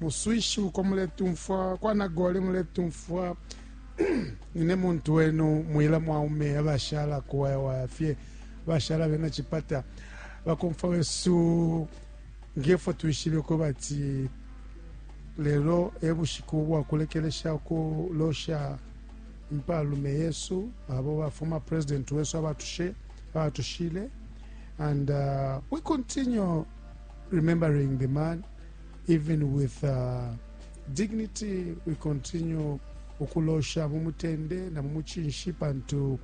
muswishi uko muletumfwa kwa nagoli muletumfwa nine muntu wenu mwila mwaume abashala kuwayawaya fye bashala bena chipata bakomfwa wesu ngefo twishibe ko bati lelo ebushiku bwakulekelesha kulosha impalume yesu abo bafuma president wesu abatushe abatushile and uh, we continue remembering the man even with uh, dignity we continue ukulosha mu mutende na mu mucinshi pantu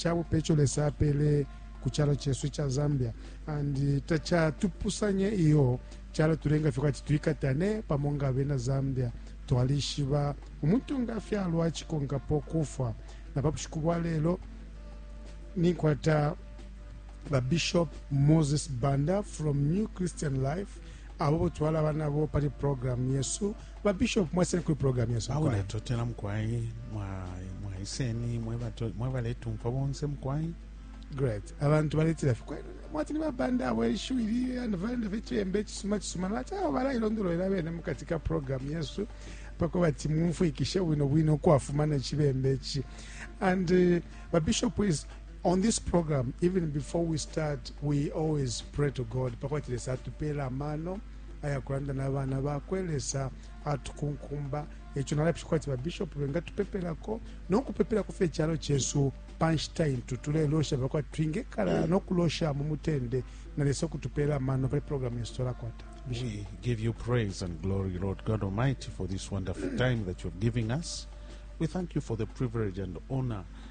cabupe ico lesa apele ku calo cesu ica zambia and tacatupusanye iyo calo tulenga fye kwati twikatane pamo nga abena zambia twalishiba umuntu nga afyalwa acikonkapo kufwa na pa bushiku bwa lelo ninkwata babishop moses banda from new christian life abo bo twalaba nabo pali programu yesu ba bishop mwaseni kuli programu yesu awe natotela mukwai mwaiseni mwe baletumfwa bonse mukwai great abantu baletela fye mwati ni babanda abo ishiwi ili andivalenda fye chiyembe echisuma chisuma nati awo balailondolwela bene mukati ka programu yesu pako bati mumfwikishe bwino bwino ukwafuma nechibembe echi and uh, babishop is On this program, even before we start, we always pray to God. Pakwati Lesa atupela amano ayakulanda na bana bakwe Lesa atukunkumba ekyo nalabisha kwati babishopu bengatupepelako n'okupepelako ffe ekyalo kyesu pa nshita intu tuleloosha bakwati twingekala n'okulosha mu mutende na Lesa okutupeera amano pali programu yesu twalakwata We give you praise and glory, Lord God Almighty, for this wonderful time that you have given us. We thank you for the privilege and honor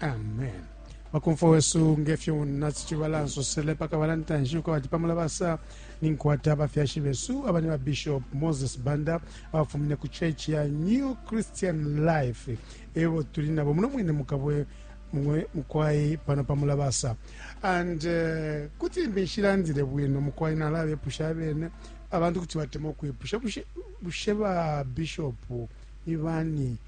amen bakomfwa wesu ngefyo nasi chibala nsosele paka balantanshi uko bati pamula basa ninkwata abafyashi besu abani ba bishop moses banda abafumine ku church ya new christian life ebo tuli nabo muno mwine mukabwe mukwai pano pamula basa and uh, kuti mbishilandile bwino mukwai nalabepusha abene abantu kuti batema ukwipusha bushe ba bishop ni bani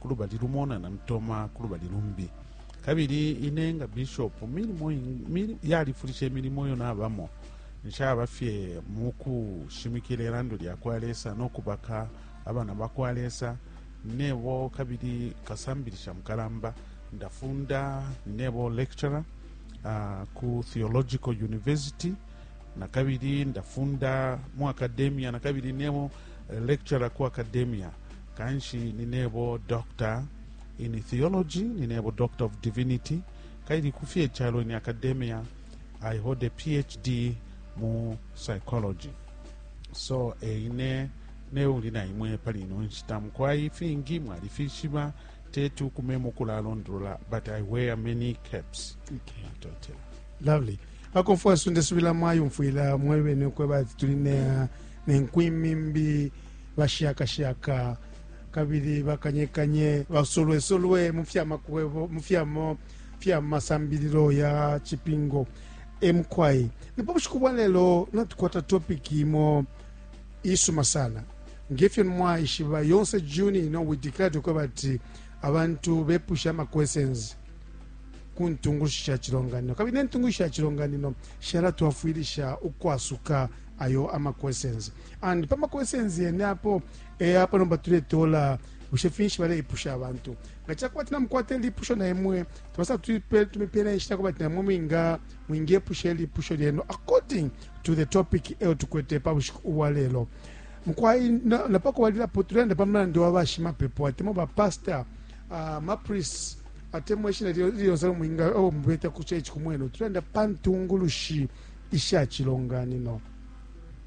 ku lubali lumo na Namtoma ku lubali lumbi kabili ine nga bishop milimo ing- mili- yalifulisha imilimo iyo nabamo nshaba fye mu kushimikila ilando lya kwa lesa no kubaka abana ba kwa lesa ninebo kabili kasambilisha mukalamba ndafunda ninebo lecturer uh, ku theological university na kabili ndafunda mu academia na kabili nemo eh, lecturer ku academia kanshi ninebo doctor in theology ninebo doctor of divinity kaili kufye icalo in academia i hold a phd mu psychology so eine eh, neuli na imwe pali ino nshita mukwai ifingi mwalifishiba teti ukume mukulalondolola but i wear many caps okay. natotela lovely akofwa sunde subila mwayumfwila mwebene ukweba ati tuli nenkwimimbi ne bashakashaka kabili bakanyekanye basolwesolwe mu fya makwebo mu fyamo fya masambililo ya cipingo emukwai ndipo bushiku bwa lelo natukwata topiki imo isuma sana ngefyo mwaishiba yonse juni ino we declare to kweba ati abantu bepusha ama questions ku ntungulushi sha cilonganino kabili ne ntungulushi sha cilonganino shalatwafwilisha ukwasuka ayo ama questions and pa maquestions yene apo eh, apo nomba tuletola bushe finshi baleipusha abantu nga cakuba tina mukwate lipusho na imwe tubasa tuipe- tumipela inshita kuba tina mwe mwinga mwingepusha ilipusho lyenu according to the topic eyo tukwete pa bushiku ubwa lelo mukwai na- napa kubalilapo tulenda pa mulandi wa bashimapepo atemo bapasta uh, mapris atemwa ishina liyonse mwinga owo mubeta ku church kumwenu tulenda pa ntungulushi isha cilonganino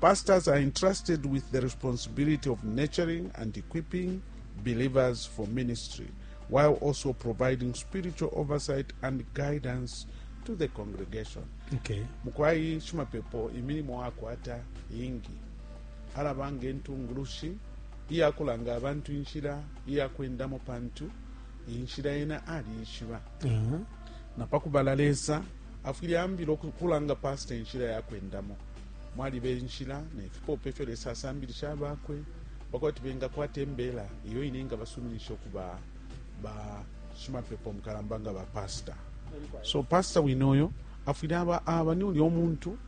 Pastors are entrusted with the responsibility of nurturing and equipping believers for ministry, while also providing spiritual oversight and guidance to the congregation. Okay. mukwai shimapepo imilimo akwata ingi alaba nga entungulushi iyakulanga abantu inshila iyakwendamo pantu inshila yena aliishiba Uh-huh. napakubala lesa afwile ambila oku- kulanga pasita inshila yakwendamo Mwaliba inshila ne fipope ifyo Lesa asambilisha abakwe pa kuti bengakwata imbela iyo ine ingabasuminisha ukuba bashimapepo mukalamba nga bapasta. So pasta wine uyo afwile aba aba ni ulya umuntu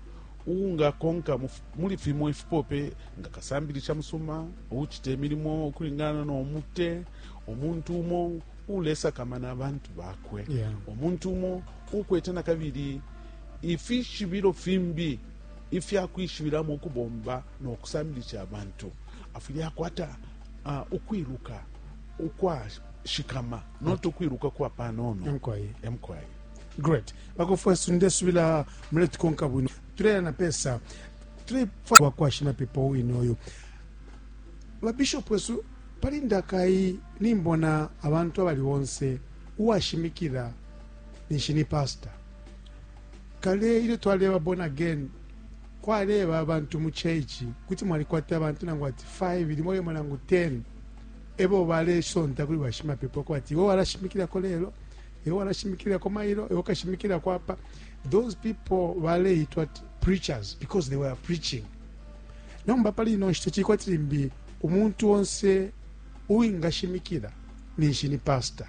uungakonka muli fimo ifipope nga kasambilisha musuma uucita imilimo ukulingana no mute umuntu umo uulesakamana abantu bakwe yeah. umuntu umo uukwete na kabili Ifishibilo fimbi ifya kwishibilamo ukubomba no kusambilisha abantu, Afwile akwata ukwiluka ukwashikama, not ukwiluka kwa panono. Emukwayi. Emukwayi. Great. Bakofwesu ndesubila muletukonka bwino. Tuleya na pesa. Tulefwa wakwashina pepo wine oyo. Ba bishop wesu pali ndakai nimbona abantu abali bonse uwashimikila ninshi ni pastor. Kale ilyo twaleba born again, kwaleba abantu mu church, kuti mwalikwata abantu nangu ati 5 limo limo nangu 10 ebo balesonta kuli bashimapepo kwati iwe walashimikilako lelo iwe walashimikilako mailo iwe ukashimikilako apa those people baleitwa preachers because they were preaching nomba pali ino nshita chili kwati limbi umuntu onse uwingashimikila ninshi ni pastor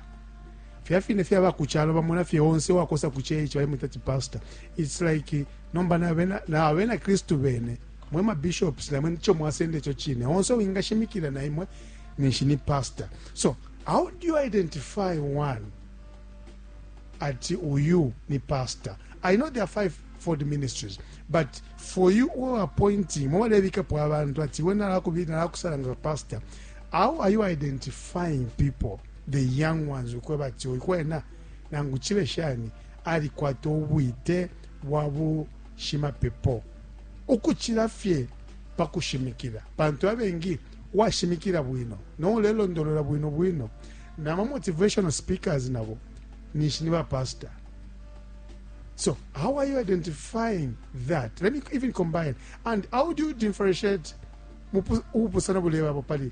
Filya fine fye aba ku calo bamona fye onse uwakosa ku church balemwita ati pastor. It's like nomba na abena, na abena Kristu bene mwe ma bishops na mwe nico mwasenda ico cine. Onse uwingashimikila na imwe ninshi ni pastor. So how do you identify one ati uyu ni pastor? I know there are five fold ministries but for you who are appointing mwe balebikapo abantu ati iwe nalakubili nalakusala nga pastor how are you identifying people the young ones ukweba ati oyu kwena nangu chibe shani alikwata ubwite bwa bushimapepo ukuchila fye pakushimikila pantu abengi washimikila bwino noulelondolola bwino bwino na ma motivational speakers nabo ninshi ni bapastor so how are you identifying that let me even combine and how do you differentiate ubupusana bulebapo pali